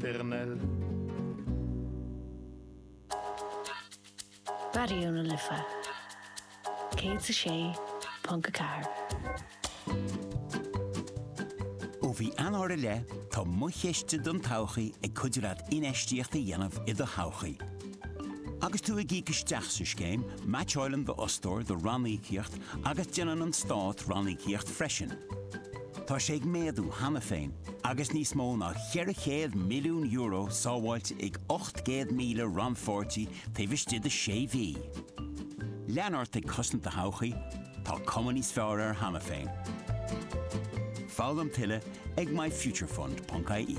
Tiarnaill. Raidió na Life 106.4. Ó mhí Eanáir i leith, tá Mo Chiste don Todhchaí ag cuidiú leat infheistíocht a dhéanamh i do thodhchaí. Agus tú ag íoc isteach sa scéim, meaitseáileann d'fhostóir do ranníocaíocht agus déanann an Stát ranníocaíocht freisin. Tá sé ag méadú cheana féin agus níos mó ná €400 milliún sábháilte ag 800,000 rannpháirtí taobh istigh de shé mhí. Lean ort ag cosaint do thodhchaí, tá cuma níos fearr uirthi cheana féin. Foghlaim tuilleadh ag myfuturefund.ie.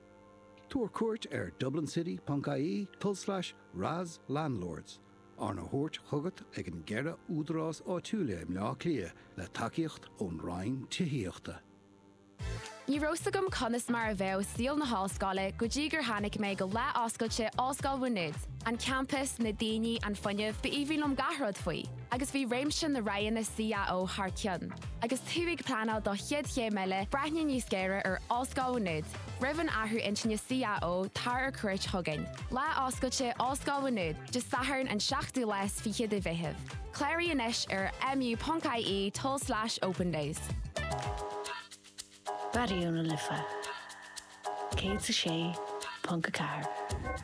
Tabhair cuairt ar dublincity.ie tulslais RAS Landlords, arna thabhairt chugat ag na ceithre údarás áitiúla i mBleá Cliath le tacaíocht ón Roinn Tithíochta. Ní raibh 's agam conas mar a bheadh saol na hollscoile go dtí gur tháinig mé go lá oscailte Ollscoil Mhá Nuad. An campas, na daoine, an fuinneamh, ba aoibhinn liom gach rud faoi. agus bhí réimse na roghanna CAO thar cionn. Agus tú ag pleanáil do chéad chéim eile, breathnaigh níos géire ar Ollscoil Mhá Nuad roimh an athrú intinne CAO, tar ar cuairt chugainn. Lá Oscailte Ollscoil Mhá Nuad, Dé Sathairn an 7ú lá is fiche de Mheitheamh. Cláraigh anois ar mu.ie tulslais opendays. Raidió na Life 106.4.